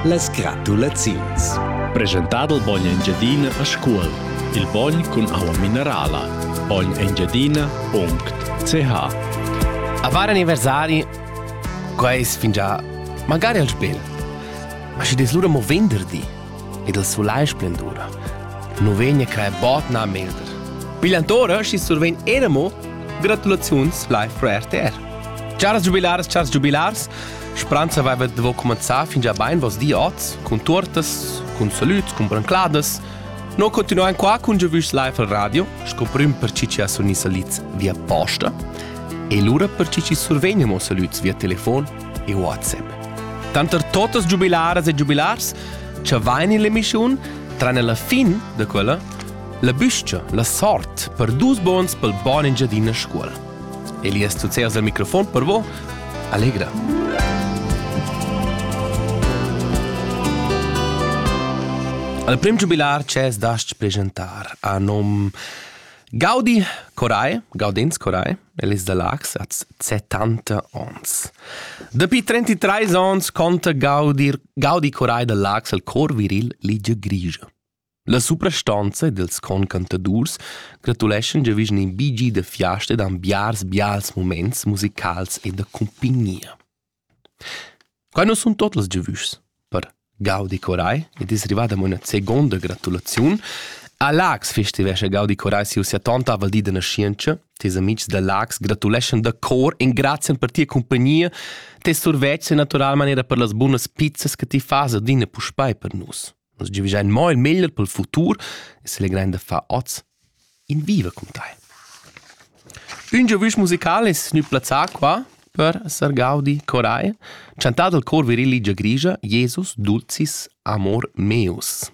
Las gratulaziuns. Presentar il bogn Engiadina a Scuol. Il bogn cun aua minerala. Bognengiadina.ch A var anniversari, quais fingià magari al spel. Ma schi des lura mo venderdi ed il sulai splendura. Nu vegna crae bot na melder. Pigliantora schi survegn era mo gratulaziuns live for RTR. Charas giubilaras, charas giubilars, Speranza aveva devo comenzar fin già bain vos di oz, cun tortas, cun salüts, cun brancladas. No continuain qua cun Giovüs Live al radio, sco prüm per chi ci ha suni salüts via posta, e lura per chi ci survegnemo salüts via telefon e WhatsApp. Tanter totas giubilaras e giubilars, ci vain in l'emissiun, tranne la fin da quella, la büscia, la sort per dus bons pel bon Engiadina scuola. Elias tuzzas il microfon per vo? Allegra. Al prim giubilar ces dast presentar a nom Gaudi Corai, Gaudins Corai, Elis da Lax, az 70 ons. Dapi 33 ons conta Gaudi, Gaudi Corai da Lax al cor viril Ligia Grigia. La suprastanza ed ils concantadurs gratuleschan giavischan in bi gi da fiasta ed han biars bials muments musicals e da cumpignia. Quai nu sun tot las giavüschs per Gaudi Coray ed es rivada amo üna seguonda gratulaziun a Laax festivescha Gaudi Coray siu settanta val di da naschientscha. Tes amics da Laax gratuleschan da cor e grazian per tia compagnia. Tes survetsch è naturalmain era per las bunas pizzas che ti fas adina puspei per nus. Nus giavischein mo il meglier pel futur e selegrein da far oz in viva cun tai. Ün giovüsch musical es gnü plazzà qua per Sar Gaudi Coray, chantà dal cor virilli giagrigia Jesus dulcis amor meus.